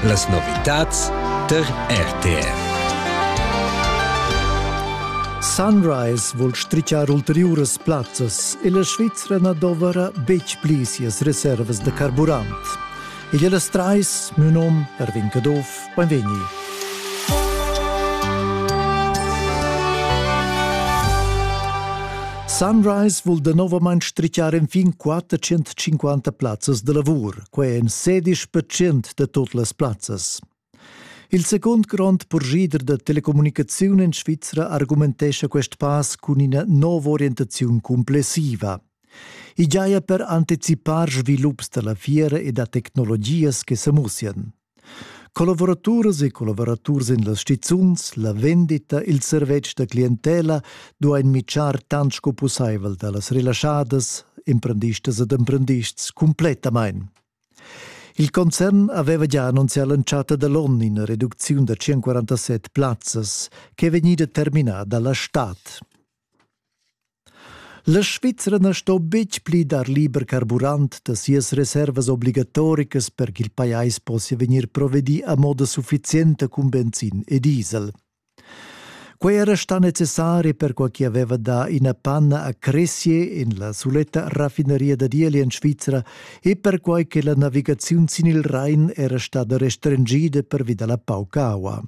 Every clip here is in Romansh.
Las novitads tar RTV. Sunrise vul strichar ulteriuras plazzas e la Svizra na dovra betg pli sias reservas da carburant. Igl las trais, miu nom Erwin Caduff, Buonvegni. Sunrise vul danovamain strichar enfin 450 plazzas da lavur, quai en 16% da tut las plazzas. Il secund grond purschida da telecommunicaziun en Svizra argumentescha quest pass cun ina nova orientaziun complessiva. I giaja per anticipar svilups da la fiera e da tecnologias che sa mussian. Collavuraturas e collavuraturs en las stizuns, la vendita, il servetsch da clientela duain mitschar tant sco pussaivel da las relaschadas, emprendistas ed emprendists cumplettamain. Il concern aveva gia annunzià l'entschatta da l'onn ina reducziun da 147 plazzas ch'è vegnida terminada la stad. La Svizra na sto betg pli dar liber carburant da sias reservas obligatoricas per ch'il pajais possia vegnir provedì a moda suffizienta cun benzin e diesel. Quei era stà necessari perquai che aveva dà ina panna a Cressier en la suletta raffineria da Dieli en Svizra e perquai che la navigaziun sin il Rhein era stada restringida pervi dalla pauca aua.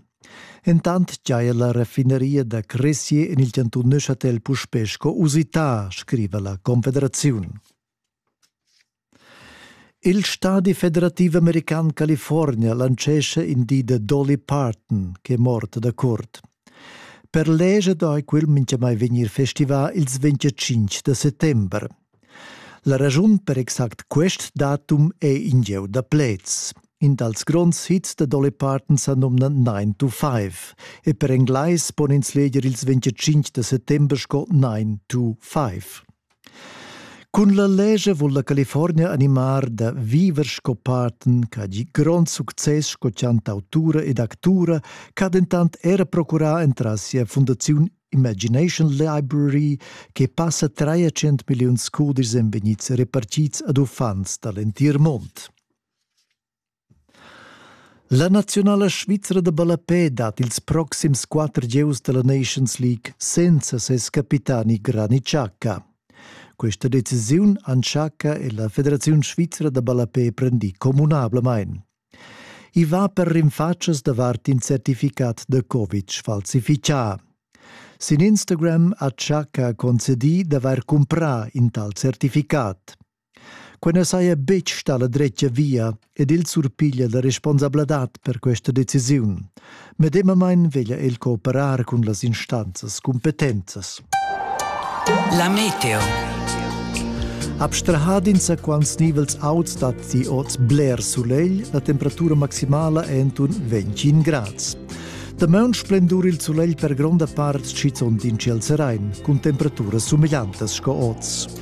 Entant giaja la raffineria da Cresia en il chantun Neuchâtel puspè sco usità, scriva la Confederaziun. Il stadi federativ american California lancescha in di da Dolly Parton, che è morta da curt. Per leger dai quel mintgamai vegnir festivà ils 25 da settember. La raschun per exact quest datum è in gieu da pleds. In dals gronds hits da Dolly Parton sa nomna 9 to 5 e per englais pon ins leger ils 25 da settember sco 9 to 5. Cun la lescha vul la California animar da viver sco Parton ch'ha gì grond success sco chantautura ed actura, ch'ha dentant era procurà entras sia fundaziun Imagination Library che passa 300 milliuns cudis en vegnids repartids ad uffants da l'entir mond. La naziunala svizra da ballapè dat ils proxims quatter gieus della Nations League senza ses capitani Granit Xhaka. Questa decisiun Anchaka e la Federazione Svizra da ballapè prendì communablamain. I va per rinfatschas davart in certificat da covid sfalsifichà. Sin Instagram ha Chaka concedì d'avair cumprà in tal certificat. Quai na saja betg stà la dretga via ed il surpiglia la responsabladad per questa decisiun, Medemamain veglia el cooperar cun las instanzas cumpetenzas. La meteo. Abstrahad insaquants nivels auts dat ti oz bler sulegl, la temperatura maximala è entun 25 grads. Damaun splendur il sulegl per gronda part schizont in ciel serain, cun temperaturas sumegliantas sco oz.